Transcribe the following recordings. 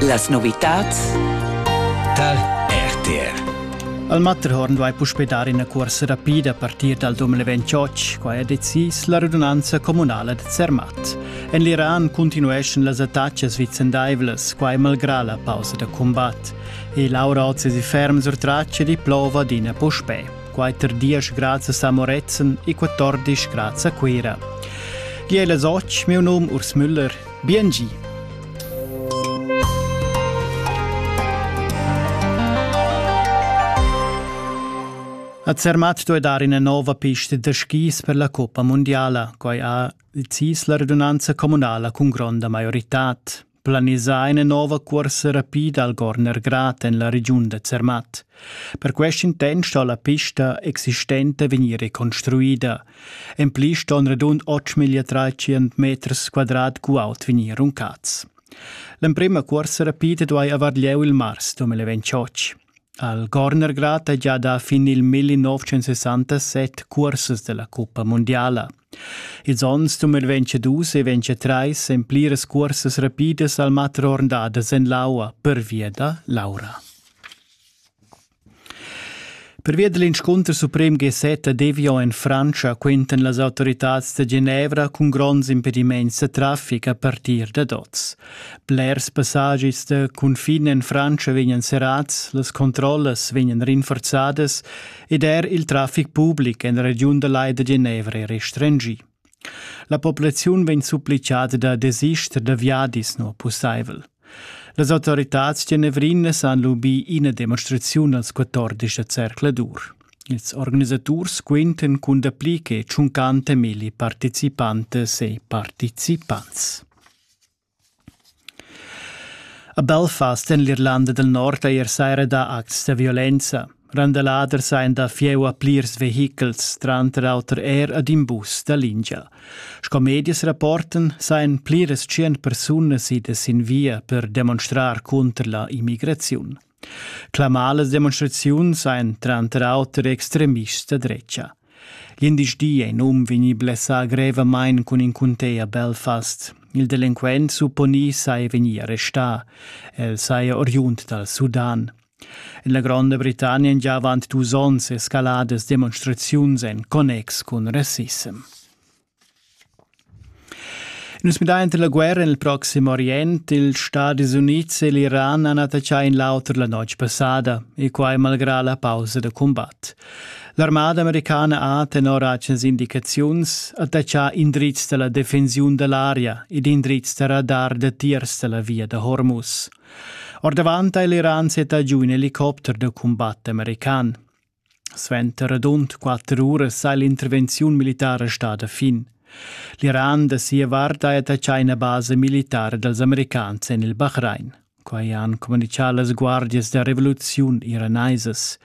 Las novitads tar RTR. Al Matterhorn vai puspè dar ina cuorsa rapida a partir dal 2028. Qua è decis la radunanza communala da Zermatt. En l'Iran cuntinueschan las attacas vicendaivlas, quai malgrà la pausa da cumbat. E Laura Ozzi ferm sur traccia di plova adina puspè. quaterdisch grazias a Moretzen e quattordisch grazie a Cuira. Gie las och, meu nom Urs Müller. Biengi. A Zermatt doi dar ina nova pista da skis per la Coppa Mondiala, quai ha il CIS la redunanza comunala cun gronda maiorità. planisà ina nova cuorsa rapida al Gorner Grat en la regiun da Zermatt. Per quest intent sto la pista existenta vegnir reconstruida. En pli ston radund 8.300 meters quadrat guaut vegnir runcats. L'emprima cuorsa rapida duai avar lieu il mars 2028. Al Gorner Grat è già da fin il 1967 cursas della Cuppa Mondiala. Ils onns 2022 e 2023 èn pliras cursas rapidas al matter ornadas en l'aua pervia da l'aura. Pervia dell'inscunter suprem G7 a Devio en Francia quentan las autoritads da Genevra cun gronds impediments da traffic a partir da oz. Blers passagis da cunfin en Francia vegnan serrads, las controllas vegnan rinforzadas ed er il traffic public en la regiun da Lai da Genevra è restringì. La populaziun vegn supplichada da desister da viadis no pussaivel. Las autoritads genevrinas han lubì ina demonstraziun als 14 da Zercladur. Ils organisaturs quinten cun dapli che 50 milli participantes e partecipants. A Belfast en l'Irlanda del Nord ei er saira dà acts da violenza. Randaladers ein da fieu a plirs vehichels, tranter auter er ad in bus da lingia. Sco medias rapporten, sain pliras tschien persunas idas sin via per demonstrar cunter la immigraziun. Clamar las demonstraziuns ein tranter auter extremists da drecia. Glindisdi è in um vegnì blessà grevamain cun in cuntea Belfast. Il delinquent supponì sei vegnì arrestà. El saja oriund dal Sudan. En la Gronda Britannia han già avant dus onns escaladas demonstraziuns en connex cun rassissem. Nus midain tar la guerra en il Proxim Orient. Ils Stadis Unids e l'Iran han attaccà in l'auter la notg passada, e quai malgrà la pausa da cumbat. L'armada americana ha, tenor atgnas indicaziuns, attaccà indrizs da la defensiun da l'aria ed indrizs da radar datiers da la via da Hormuz. Ordavant ha l'Iran settà giu in helicopter da cumbat american. Suenter radund quatter uras ha l'intervenziun militara stada fin. L'Iran da sia vart ha attaccà ina basa militara dals americans en il Bahrain. Quai han communitgà las guardias da revoluziun iranaisas.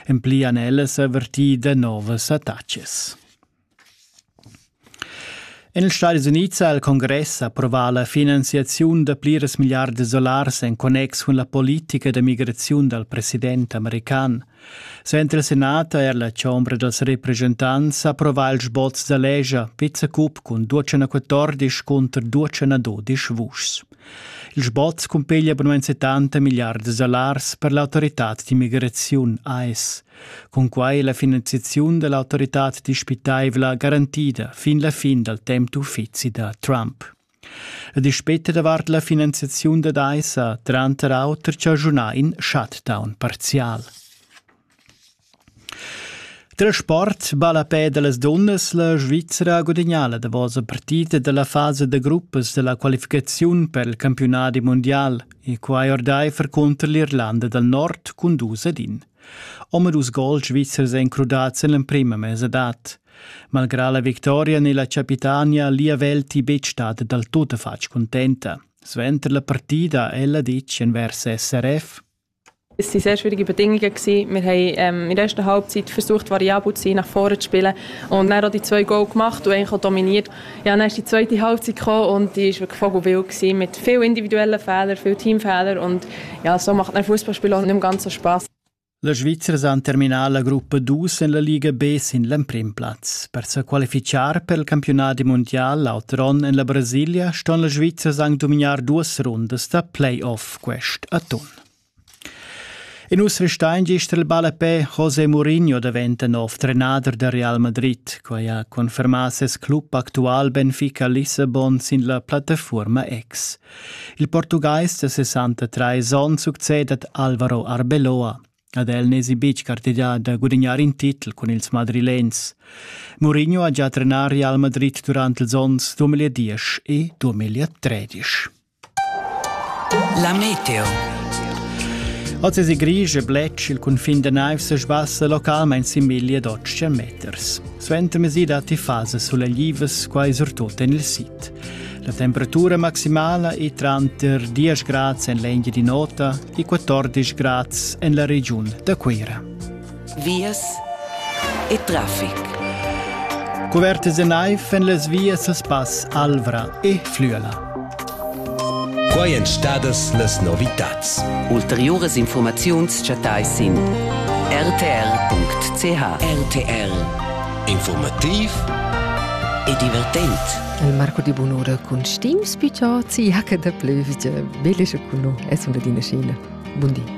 En pli han ellas avertì da novas attacas. En ils Stadis Unids ha il congress approvà la finanziaziun da pliras milliardas dollars en connex cun la politica da migraziun dal president american. Suenter il senat ha er la chombra dals represchentants approvà il sboz da legia Vizecup cun 214 cunter 212 vuschs. Il sboz cumpiglia abunanza tanta milliardas dollars per l'autoritad d'immigraziun AS. Cunquai la finanziaziun da l'autoritad dispitaivla garantida fin la fin dal temp d'uffizi da Trump. La dispeta davart la finanziaziun da DAISA tranter auter chaschunà in shutdown parzial. Tra sport balla pe da las dunnas la Svizzera gudagnà la davosa partida della fase da gruppas della qualificaziun per il campionat mondial e quai ordaifer contro l'Irlanda dal Nord cun dus ad in. Omadus gols svizzers ein crudads en l'emprema mesadad. Malgrà la victoria ni la capitania lia Velti betg stat dal tuttafatg contenta. Suenter la partida ella ditg envers SRF. Es waren sehr schwierige Bedingungen. Wir haben ähm, in der ersten Halbzeit versucht, variabel zu sein, nach vorne zu spielen und dann auch die zwei Goal gemacht und eigentlich auch dominiert. Ja, dann ist die zweite Halbzeit gekommen und die war wirklich vogelwild mit vielen individuellen Fehlern, vielen Teamfehlern und ja, so macht ein Fußballspiel auch nicht mehr ganz so Spaß. La Svizzera ha terminà la gruppa dus en la Liga B sin l'emprim plaz. Per se qualificar per il campionat mondial l'altro onn en la Brasilia ston la Svizzera anche dominar duas rundas da playoff quest atun. E nus restein gist el ballapè José Mourinho daventa nov trenader da Real Madrid. Quai ha confermà ses club actual Benfica Lissabon sin la plattafuorma ex. Il portugais da 63 onns succedet Alvaro Arbeloa. Ad el n'esi betg cartegià da gudignar in titel cun ils madrilens. Mourinho ha già trenà Real Madrid durant ils onns 2010 e 2013. La meteo. Oz es grig e bletsch il cunfin da naiv se sbassa localmain sin miglia d'otschen meters. Suenter mesida ti fase suleglivas quai surtut en il sit. La temperatura maximala è tranter 10 grads en l'Engia di nota e 14 grads en la regiun da Cuira. vias e trafic. Cuvertas e naiv en las vias a spass Alvra e Flüela. Quai èn stadas las novitads. Ulteriuras informaziuns chattai sin rtr.ch. RTR Informativ e divertent. Il Marco di Bunura cun Stim Spitò, CH da Plövgia. Bellische Kuno, es una dina scena. Buon di.